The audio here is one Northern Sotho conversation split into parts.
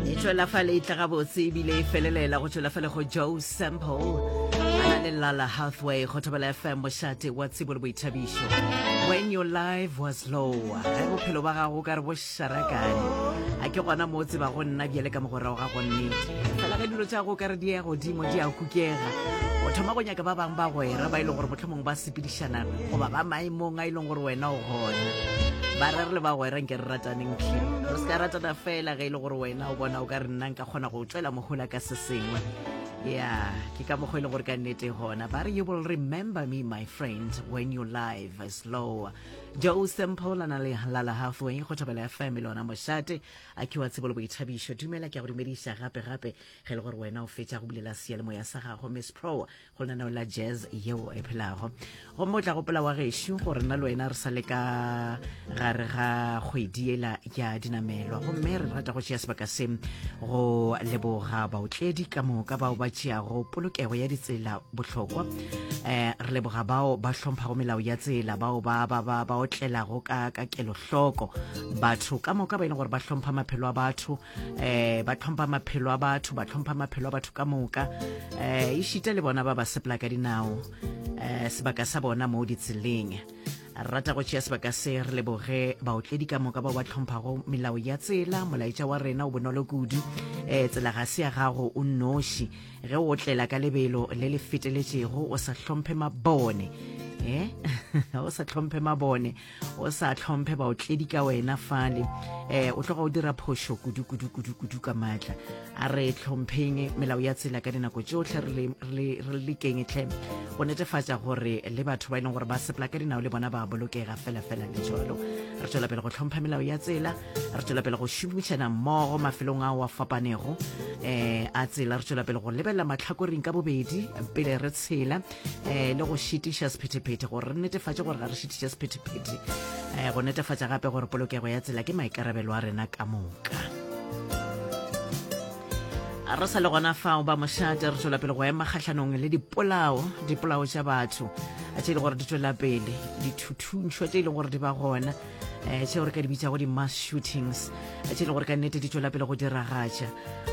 e tšwela fa le tla gabotse ebile e felelela go tšwela fa le go joe sample ana le lala halfway go thobela fm mošate wa tsebo le boithabišo when your life was low ge bophelo ba gago ka re bo sharakane a ke gona mo tseba go nna bjale ka mogorago ga gonne fela ge dilo tša go ka re di ya godimo di a kukega o thoma go nyaka ba bangwe ba gwera ba e le gore motlhomong ba sepedišana goba ba maemong a e leng gore wena o gona ba re re le bagwera nke re rataneng tlhe re se ka ratana fela ge e le gore wena o bona o ka re nna nka kgona go tšwela mohola ka se sengwe ya ke ka mokgwa e leng gore ka nnete gona ba re you will remember me my friend when your life is low joe sempola na le lala halfway go thabela ya family ona mošate a ke wa tsebolo boithabišo dumela ke a go dumediša gape gape ge e le gore wena o fetša go bulela seyalemoya sa gago miss pro go lenaneo la jazz yeo e phelago gomme o tla gopola wa gešo gore nna le wena re sa le ka gare ga kgwedi ela ya dinamelwa gomme re rata go tšea sebaka se go leboga baotledi ka moka bao ba tšeago polokego ya ditsela bohlokwa um re leboga bao ba hlomphago melao ya tsela bao ba ba ba ba otlelago ka ka kelohloko batho ka moka ba e leng gore ba hlompha maphelo a batho eh ba tlhompha maphelo a batho ba tlhompha maphelo a batho ka moka eh e šita le bona ba ba sepela ka dinao eh sebaka sa bona mo ditseleng rata go tšea sebaka se re leboge baotledi ka moka bao ba tlhomphago melao ya tsela molaetša wa rena o bonolo kudu um tsela ga se ya gago o nnoši ge o tlela ka lebelo le le feteletšego o sa hlomphe mabone e o sa tlhomphe mabone o sa tlhomphe baotledi ka wena fale um o tloga o dira phošo kudu kudu kudu kudu ka maatla a re tlhompheng melao ya tsela ka dinako tsotlhe re lekeng tlhe go netefatša gore le batho ba e leng gore ba sepela ka dinao le bona ba bolokega felafela le jalo re tswela pele go tlhompha melao ya tsela re tswela pele go šomišana mmogo mafelong ao a fapanego um a tsela re tswela pele go lebelela matlhakoring ka bobedi pele re tshela eh le go šitiša sephetephete gore re netefatše gore ga re šitiša sephetephete um go netefatša gape gore polokego ya tsela ke maikarabelo a rena ka moka re sa le gona fao ba mošate re tswela pele go ema kgatlhanong le dipolao dipolao tša batho tše e le gore di tswela pele dithuthuntšhwa tše e leng gore di ba gona um tšeo re ka di bitsago di-mass shootings tše e le gore ka nnete di tswela pele go diragatša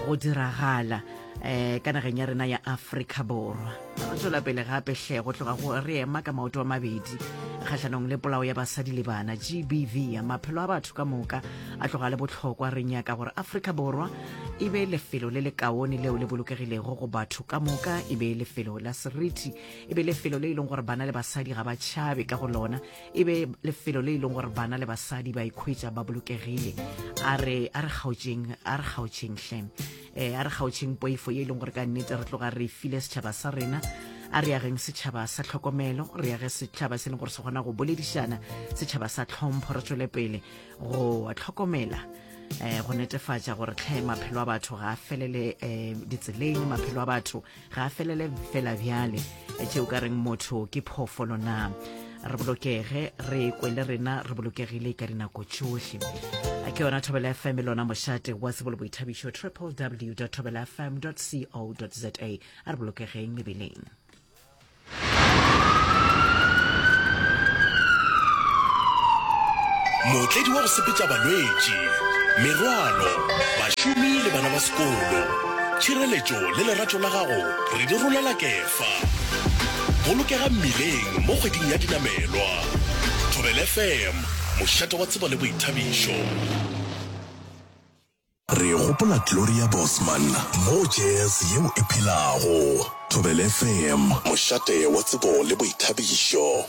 go diragala um ka nageng ya rena ya afrika borwa Re tšwela pele gape hle go tloga go re ema ka maoto a mabedi kgahlanong le polao ya basadi le bana GBV. Maphelo a batho ka moka a tloga le bohlokwa. Re nyaka gore Afrika Borwa e be lefelo le le kaone leo le bolokegilego go batho ka moka, e be lefelo la seriti, e be lefelo le e leng gore bana le basadi ga ba tšhabe ka go lona, e be lefelo le e leng gore bana le basadi ba ikhwetša ba bolokegile. A re kgaotšeng, a re kgaotšeng hle. um a re kgaotšheng poifo ye e leng gore ka nnete re tloga re file setšhaba sa rena a re ageng setšhaba sa tlhokomelo re age setšhaba se e leng gore se kgona go boledišana setšhaba sa tlhompho re tswele pele go tlhokomela um go netefatša gore tlhe maphelo a batho ga a felele um ditseleng maphelo a batho ga a felele fela bjale tšeo ka reng motho ke phoofolo na re bolokege re kwe le rena re bolokegile ka dinako tšohle ke yona thobela fm e lona mošate wa sebolo boithabišo www thobela fm co za a re bolokegeng mebeleng Mootledi wa go sepetša balwetši, merwalo, bašomi le bana ba sekolo. Tšhireletšo le lerato la gago re di rolela Kefa. Bolokega mmileng mo kgweding ya dinamelwa. Thobela FM, mošate wa tsebo le boithabišo. Re gopola Gloria Bosman mo Jazz Yeo e Phelago, Thobelefm, mošate wa tsebo le boithabišo.